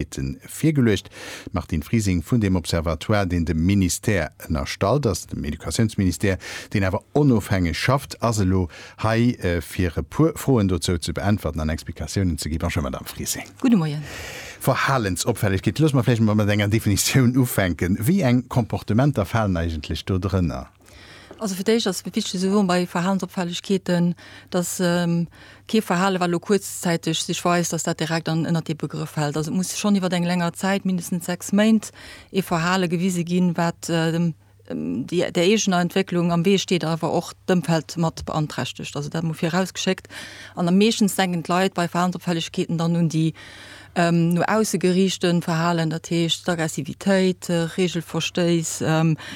Aktivitéite virgeluecht. D'Martine Frising vun deem Observatoire, deen dem Ministère ënnerstallt ass, dem Educatiounsministère, deen awer onofhängeg schafft, ass elo hei fir e puer Froen dozou ze beäntwerten an Explikatiounen ze ginn. Bonjour Madame Frising. Gudde Moien. Verhalensopfällegkeet, loosse mer vläicht emol mat enger Definitioun ufänken. Wéi eng Comportementer falen eigentlech do drënner? Also fir d'éischt ass et wichteg ze soen bei Verhalensopfällegkeeten, dass kee Verhale wat elo kuerzzäiteg sech weist, dass dat direkt an ënnert dee Begrëff fält. Also et muss schonn iwwer eng länger Zäit, mindestens sechs Méint, ee Verhale gewise ginn, wat der eegener Entwécklung am Wee steet, awer och d'Ëmfeld mat beanträchtegt. Also dat emol virausgeschéckt. An meeschtens denken d'Leit bei Verhalensopfällegkeeten dann un déi no ausse geriichten Verhalen, dat heescht d'Aggressivitéit, Reegelverstéiss,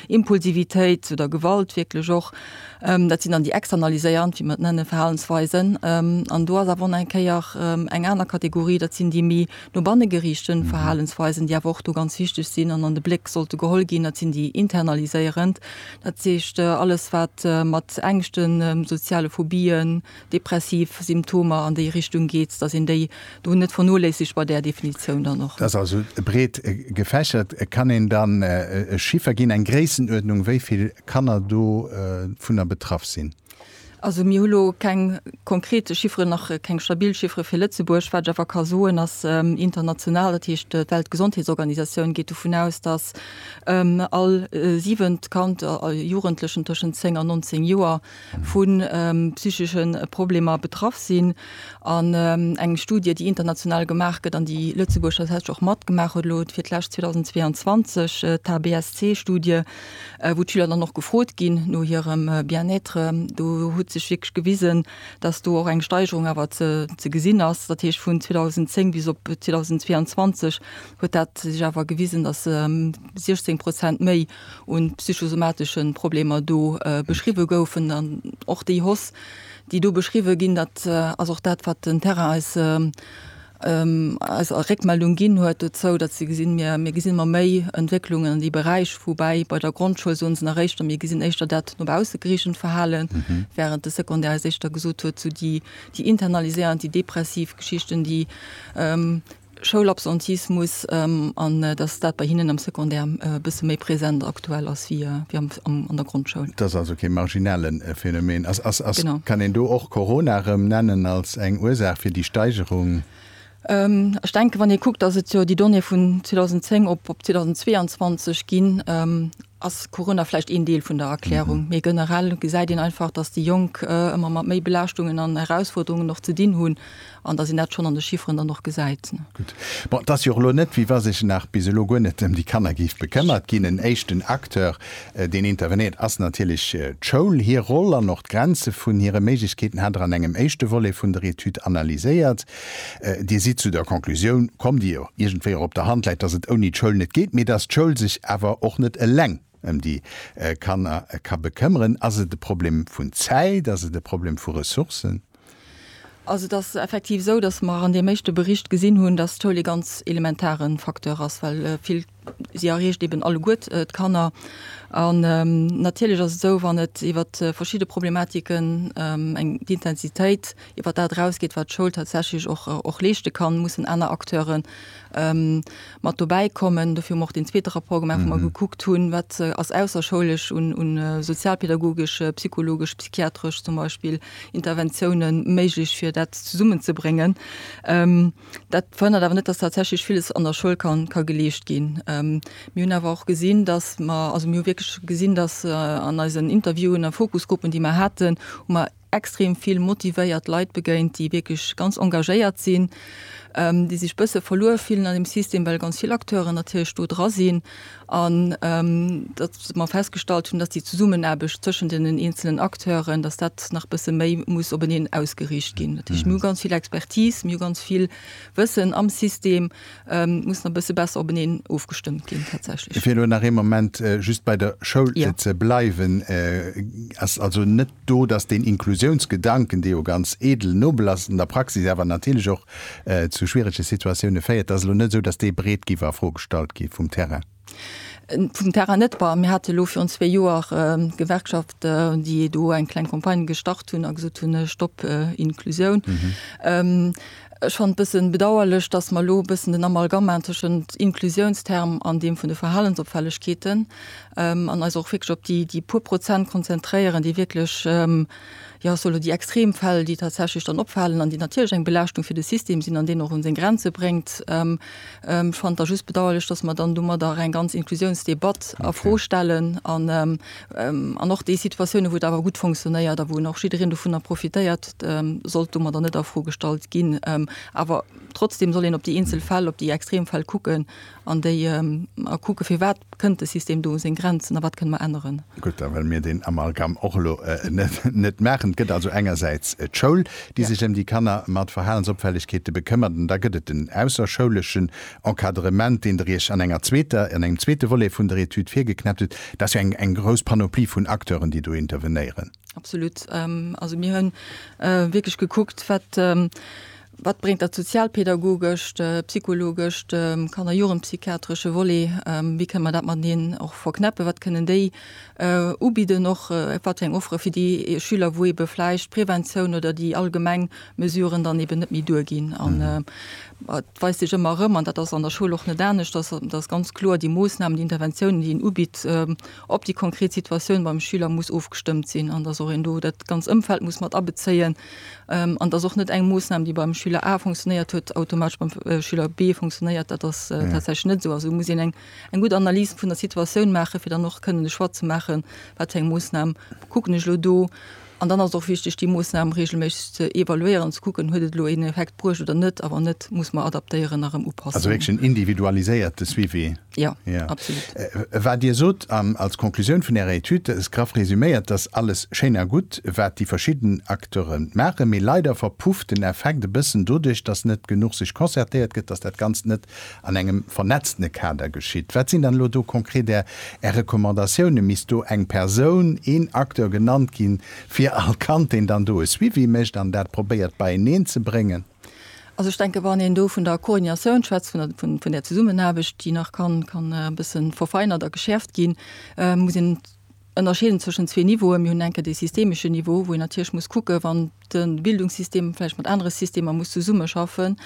Impulsivitéit oder Gewalt wierklech och, dat sinn dann déi externaliséierend, wéi mer et nennen, Verhalensweisen. An do ass awer och nach eng Kéier eng aner Kategorie, dat sinn déi méi no banne geriichten Verhalensweisen, déi awer och do ganz wichteg sinn an an de Bléck sollte geholl ginn, dat sinn déi internaliséierend, dat heescht alles wat mat Ängschten, soziale Phobien, depressiv Symptomer an déi Richtung geet, dass een déi do net vernoléissegt bei där Definitioun dann och. Dat ass also breet gefächert. Kann een dann e Chiffer ginn, eng Gréissenuerdnung, wéi vill Kanner dovunner betraff sinn? Also mir hu lo keng konkret Chifferen, nach keng stabil Chiffere fir Lëtzebuerg. Wat ech awer ka soen, ass international, dat heescht d'Weltgesondheetsorganisatioun geet dovun aus, dass all siwent Kand a Jugendlechen tëschent 10 an 19 Joer vu psychesche Problemer betraff sinn. An eng Studie, déi international gemaach gëtt an déi Lëtzebuerg tatsächlech och matgemaach huet, elo fir d'lescht 2022, d'HBSC-Studie, wou d'Schüler dann och gefrot ginn no hirem Bien-être, do huet sech wierklech gewisen, dass do och eng Steigerung awer ze gesinn ass. Dat heescht, vun 2010 bis op 2022 huet dat sech awer gewisen, dass 16 Prozent méi un psychosomatesche Problemer do beschriwwe goufen an och déi Hoss, déi do beschriwwe ginn, dat ass och dat, wat den Terrain eis eis a Réckmeldung ginn huet dozou, datt se gesinn, mir gesinn ëmmer méi Entwécklungen an dee Beräich, woubäi bei der Grondschoul soen se nach éischter, mir gesinn éischter dat no bausse geriichtent Verhalen, wärend de Secondaire eis éischter gesot huet, esou déi internaliséierend, déi depressiv Geschichten, déi Schoulabsentismus an dass dat bei hinnen am Secondaire e bësse méi present aktuell ass wéi an der Grondschoul. Dat ass also kee marginale Phänomen. Kann een do och Corona erëm nennen als eng Ursaach fir déi Steigerung? Ech denken, wann ee kuckt, dass et jo déi Donnéeë vun 2010 op 2022 ginn, ass Corona vläicht een Deel vun der Erklärung, mee generell gesäit een einfach, datt déi Jonk ëmmer mat méi Belaaschtungen an Erausfuerderungen och ze dinn hunn an datt een dat schonn an de Chifferen dann och gesäit. Gutt, bon, et ass jo och elo net, wéi wa sech nach bis elo guer net ëm déi Kanner géif bekëmmert ginn. En éischten Acteur, deen intervenéiert, ass natierlech d'Schoul. Hir Roll an och d'Grenze vun hire Méiglechkeeten hat Der an engem éischte Volet vun der Etüd analyséiert. Dir sidd zu der Conclusioun komm, déi jo iergendwéi och op der Hand läit, dass et ouni d'Schoul net geet, mee dass d'Schoul sech awer och net eleng ëm déi Kanner ka bekëmmeren. Ass et e Problem vun Zäit? Ass et e Problem vu Ressourcen? Also et ass effektiv esou, dass mer an deem éischte Bericht gesinn hunn, dass d'Schoul ee ganz elementare Facteur ass, well vill, Si erreecht eben alleguert d'Kanner. An natierlech ass et esou, wann et iwwert verschidde Problematiken eng d'Intensitéit iwwert dat erausgeet, wat d'Schoul tatsächlech och och leeschte kann, mussen aner Acteure mat dobäi kommen. Dofir hu mer och deen zweete Rapport gemaach, wou mer gekuckt hunn, wat ass ausserschoulesch un un sozialpädagogesch, psychologesch, psychiatresch zum Beispill Interventioune méiglech, fir dat zesummenzebréngen. Dat verhënnert awer net, dass tatsächlech villes an der Schoul ka geleescht ginn. Mir hunn awer och gesinn, dass mer, also mir hu wierklech gesinn, dass an eisen Interviewen a Fokusgruppen, déi mer haten, hu mer extrem vill motivéiert Leit begéint, déi wierklech ganz engagéiert sinn, déi sech e bësse verluer fillen an deem System, well ganz vill Acteuren natierlech do dra sinn. an datt mer festgestallt hunn, datt déi Zesummenaarbecht tëschent deenen eenzelnen Acteuren, datt dat nach e bësse méi muss openeen ausgeriicht ginn. Dat heescht, mir hu ganz vill Expertise, mir hu ganz vill Wëssen am System, muss nach e bësse besser openeen ofgestëmmt ginn tatsächlech. Fir elo nach ee Moment just bei der Schoul ze bleiwen, ass also net do, dass deen Inklusiounsgedanken, dee jo ganz edel, nobel ass, an der Praxis awer natierlech och zu schwierege Situatioune féiert, dass elo net esou, dass dee breet giff a Fro gestallt gi vum Terrain. Vum Terrain net, ma mir hate elo virun zwee Joer d'Gewerkschaft, déi do eng kleng Campagne gestart hunn a gesot hunn, Stopp Inklusioun. Ech fannt bëssen bedauerlech, dass mer elo bëssen den Amalgama tëschent Inclusiounsterm an deem vun de Verhalensopfällegkeeten an eis och wierklech op déi, déi puer Prozent konzentréieren, déi wierklech, jo, soll elo déi Extremfäll, déi tatsächlech dann opfalen an déi natierlech eng Belaaschtung fir de System sinn an deen och un seng Grenze bréngt. Ech fannt da just bedauerlech, dass mer dann domadder eng ganz Inclusiounsdebatt a Fro stellen an An och déi Situatiounen, wou et awer gutt fonctionnéiert a wou en och jiddereen dovunner profitéiert, sollt domadder net a Fro gestallt ginn. Awer trotzdeem soll een op déi eenzel Fäll, op déi extrem Fäll kucken an déi a kucke firwat kënnt de System do u seng Grenzen a wat kënne mer änneren. Gutt, da wëlle mir deen Amalgam och elo net maachen. Et gëtt also engersäits d'Schoul, déi sech ëm déi Kanner mat Verhalensopfällegkeete bekëmmert, an da gëtt et den ausserschouleschen Encadrement, deen Der Iech an enger zweeter, an engem zweete Volet vun der Etüd virgeknäppt hutt. Et ass jo eng, eng grouss Panoplie vun Acteuren, déi do intervenéieren. Absolut. Also mir hu wierklech gekuckt, wat, wat bréngt dat sozialpedagogescht, psychologescht, kanner a jugendpsychiatresche Volet, wéi kënne mer dat mateneen och verknäppen, wat kënnen déi ubidden och, wat fir eng Offere fir déi Schüler, wou ebe vläicht d'Preventioun oder déi allgemeng Mesuren dann eben net méi duerginn. An et weist sech ëmmer erëm, an dat ass an der Schoul och net anescht, dass dass ganz kloer déi Moossnamen, déi Interventiounen, déi een ubitt, op déi konkret Situatioun beim Schüler muss ofgestëmmt sinn an dass och een do dat ganz Ëmfeld muss mat abezéien an dass och net eng Moossnam, déi beim Schüler A funktionéiert huet, automatesch beim Schüler B funktionéiert. Dat ass tatsächlech net esou. Also muss een eng eng gutt Analys vun der Situatioun maachen, fir dann och kënnen de Choix ze maachen, wat fir eng Moossnam kucken ech elo do, An dann ass et och wichteg, déi Moossnam reegelméisseg ze evaluéieren, ze kucken, huet et elo een Effekt bruecht oder net, a wann net, muss mer adaptéieren a rëm upassen. Also wierklech en individualiséierte Suivi. Jo, absolut. Wat Dir sot als Conclusioun vun Ärer Etüd, graff resuméiert, dat ass alles schéin a gutt, wat déi verschidden Acteure maachen, mee leider verpufft den Effekt e bëssen doduerch, dass net genuch sech concertéiert gëtt, dass dat Ganzt net an engem vernetztene Kader geschitt. Wat sinn dann elo do konkret Är Recommandatiounen? Misst do eng Persoun, een Acteur genannt ginn, fir all Kand, deen dann do e Suivi mécht an dat probéiert beieneen ze bréngen? Also ech denken, wann een do vun der Koordinatioun schwätzt, vun där Zesummenaarbecht, déi nach kann e bësse verfeinert a geschäerft ginn, muss een ënnerscheeden zwëschen zwee Niveauen. Mir hunn enke dee systemeschen Niveau, wou een natierlech muss kucken, wann, de Bildungssystem vläicht mat anere Systemer muss zesummeschaffen,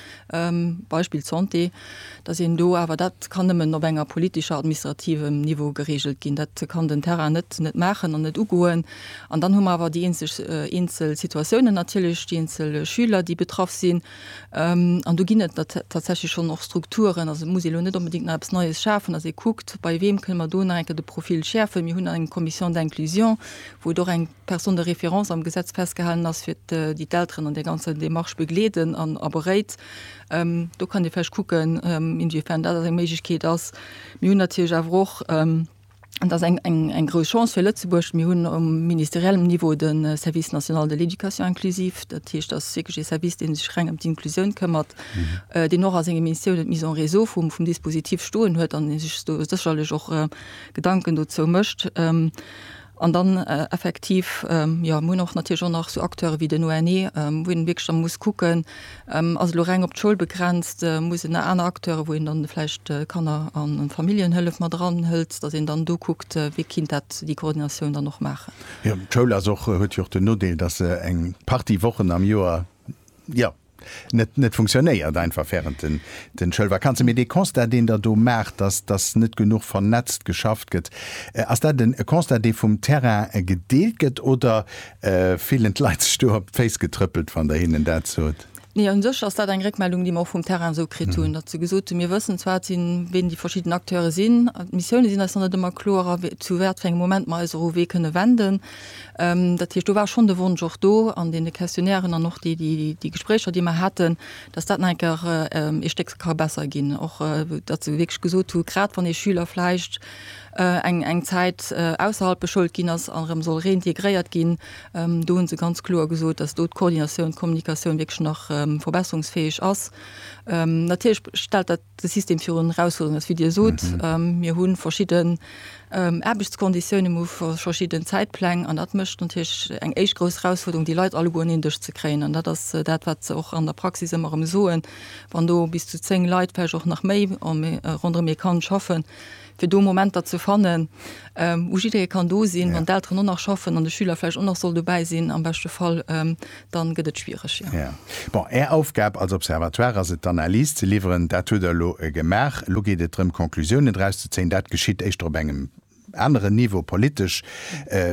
Beispill d'Santé, datt een do awer dat kann nëmmen op enger politescher, administrativem Niveau geregelt ginn. Dat kann den Terrain net net maachen an net ugoen. An dann hu mer awer déi eenzeg eenzel Situatiounen natierlech, déi eenzel Schüler, déi betraff sinn. An do ginn et tatsächlech schonn och Strukturen. Also et muss ee elo net onbedéngt nach eppes Neies schafen, datt ee kuckt, bei weem kënne mer do nach eng Kéier de Profil schäerfen. Mir hunn eng Commission d'inclusion, wou et och eng. Personne de référence am Gesetz festgehalen ass, fir déi d'Elteren an där ganzer Démarche begleeden an a beréit. Do kann ee vläicht kucken, inwiefern dat eng Méiglechkeet ass. Mir hunn natierlech awer och, an dat ass eng, eng, eng grouss Chance fir Lëtzebuerg, mir hunn um ministeriellem Niveau de Service national de l'éducation inclusive. Dat heescht, dat ass wierklech ee Service, dee sech reng ëm d'Inclusioun këmmert, deen och a senge Missioune d'Mise en réseau vum, vum Dispositif stoen huet an dee sech do sécherlech och Gedanken dozou mécht. An dann effektiv, jo, mir hunn och natierlech och nach esou Acteure wéi den ONE, wou een wierklech da muss kucken, ass elo reng op d'Schoul begrenzt, muss een aner Acteure, wou een dann vläicht Kanner a Familljenhëllef mat eranhëlt, datt een dann do kuckt, wéi kinnt dat déi Koordinatioun dann och maachen. Jo, d'Schoul ass och, huet jo och den Nodeel, datt se eng Partie Wochen am Joer, jo, net, net funktionéiert einfach während den, den Schoulvakanzen. Mee dee Constat, deen Der do maacht, dass, dass net genuch vernetzt geschafft gëtt, ass dat en, e Constat, dee vum Terrain gedeelt gëtt oder fillen d'Leit sech do op d'Féiss getrëppelt, wann Der hinnen dat sot? Nee, un sech ass dat eng Réckmeldung, déi mer och vum Terrain esou kritt hunn, datt se gesot hunn, mir wëssen zwar et sinn, ween déi verschidden Acteure sinn, d'Missioune sinn eis nach net ëmmer kloer a wéi, zu watfir engem Moment mer eis och u wee kënne wenden. Dat heescht, do war schonn de Wonsch och do an deene Questionnairen an och déi Gespréicher, déi mer haten, datt dat nach eng Kéier ee Stéck ka besser ginn. Och datt se wierklech gesot hu grad wann ee Schüler vläicht eng Zäit ausserhalb beschoult ginn ass an erëm soll reintegréiert ginn, do hu se ganz kloer gesot, datt do d'Koordinatioun, d'Kommunikatioun wierklech nach verbesserungsfäeg ass. Natierlech stellt dat. de System virun erausfuerderen ass, wéi Dir sot. Mir hu verschidden Aarbechtskonditiounen, mir hu verschidden Zäitpläng an dat mécht natierlech eng éischt grouss Erausfuerderung, déi Leit alleguer un een Dësch ze kréien. An dat ass dat, wat se och an der Praxis ëmmer erëm soen, wann do bis zu zéng Leit, vläicht och nach méi, ronderëm ee Kand schaffen, fir do Momenter ze fannen, wou jidderee kann do sinn, wann d'Elteren och nach schaffen an de Schüler vläicht och nach soll dobäi sinn am beschte Fall, da gëtt et schwiereg, jo. Jo. Bon, Är Aufgab als Observatoire ass et, d'Analys ze liwweren. Dat hutt Der elo gemaach. Elo geet et drëm, Conclusiounen draus ze zéien. Dat geschitt éischter op engem aneren Niveau, politesch,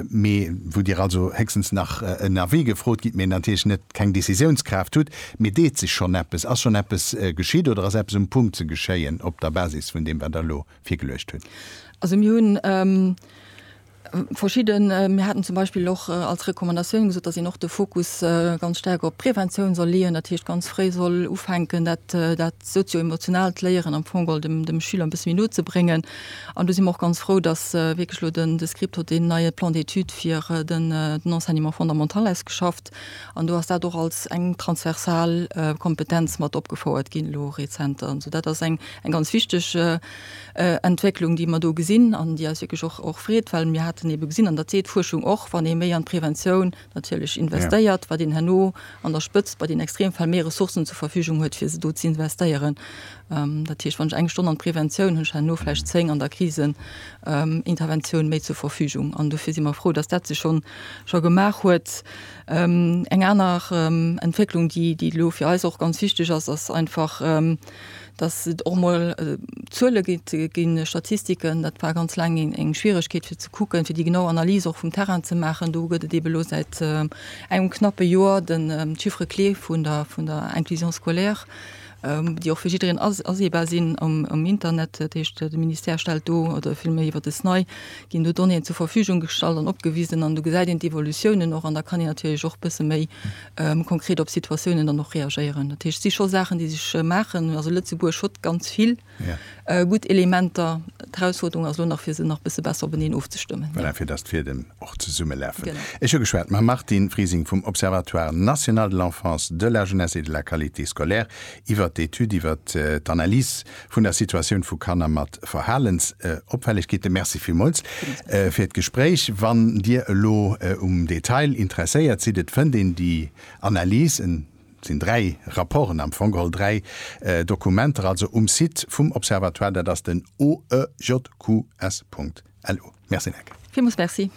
mee wou Dir also héchstens nach en Avis gefrot gitt, mee natierlech net keng Décisiounskraaft hutt. Mee deet sech schonn eppes? Ass schonn eppes geschitt oder ass eppes um Punkt ze geschéien op der Basis vun deem, wat Der elo virgeluecht hutt? Also mir hunn verschidde, mir haten zum Beispill och als Recommandatioun gesot, datt een och de Fokus ganz staark op d'Preventioun soll leeën, dat heescht ganz fréi soll ufänken, dat dat sozio-emotionaalt Léieren am Fong och dem dem Schüler e bësse méi no ze bréngen. An do si mer och ganz frou, datt wierklech elo de de Script hott deen neie Plan d'études fir den den Enseignement fondamental ausgeschafft. An do ass dat och als eng transversal Kompetenz mat opgefouert ginn elo rezenter. Also dat ass eng ganz wichteg Entwécklung, déi mer do gesinn an déi eis wierklech och freet, well mir haten ebe gesinn, an dat seet d'Fuerschung och, wann ee méi an d'Preventioun natierlech investéiert, wat een herno an der Spëtzt bei den Extremfäll méi Ressourcen zur Verfügung huet, fir se do z'investéieren. Dat heescht, wann ech eng Stonn an d'Preventioun hunn, ech herno vläicht zéng an der Kriseninterventioun méi zur Verfügung. An dofir si mer frou, dass dat sech schonn scho gemaach huet. Eng aner Entwécklung, déi elo fir eis och ganz wichteg ass, ass einfach, dass et och emol Zuele ginn, Statistiken. Dat war ganz laang eng Schwieregkeet fir ze kucken, fir déi genau Analys och vum Terrain ze maachen. Do gëtt et ebe lo säit engem knappe Joer de Chiffre clé vun der Inclusion scolaire. déi och fir jiddereen aseebar sinn am Internet, dat heescht de Ministère stellt do oder villméi iwwer de SNAI ginn do Donnéeën zur Verfügung gestallt an opgewisen an do gesäit een d'Evolutiounen och an da kann een natierlech och e bësse méi konkret op Situatiounen dann och reagéieren. Dat heescht, et si scho Saachen, déi sech maachen. Also Lëtzebuerg huet ganz vill. gutt Elementer. D'Erausfuerderung ass elo nach, fir se nach e bësse besser openeen ofzestëmmen. Voilà, fir datt d'Fiedem och zesummelaafen. Ech hu geschwat mam Martine Frising vum Observatoire national de l'enfance, de la jeunesse et de la qualité scolaire iwwert d'Etüd iwwer d'Analys vun der Situatioun vu Kanner mat Verhalensopfällegkeeten. Merci villmools fir d'Gespréich. Wann Dir elo um Detail interesséiert sidd, et fënnt een déi Analys, en. Et sinn dräi Rapporten am Fong geholl, dräi Dokumenter also um Site vum Observatoire, dat ass den oejqs. Lu. Merci Nneke. Villmools Merci.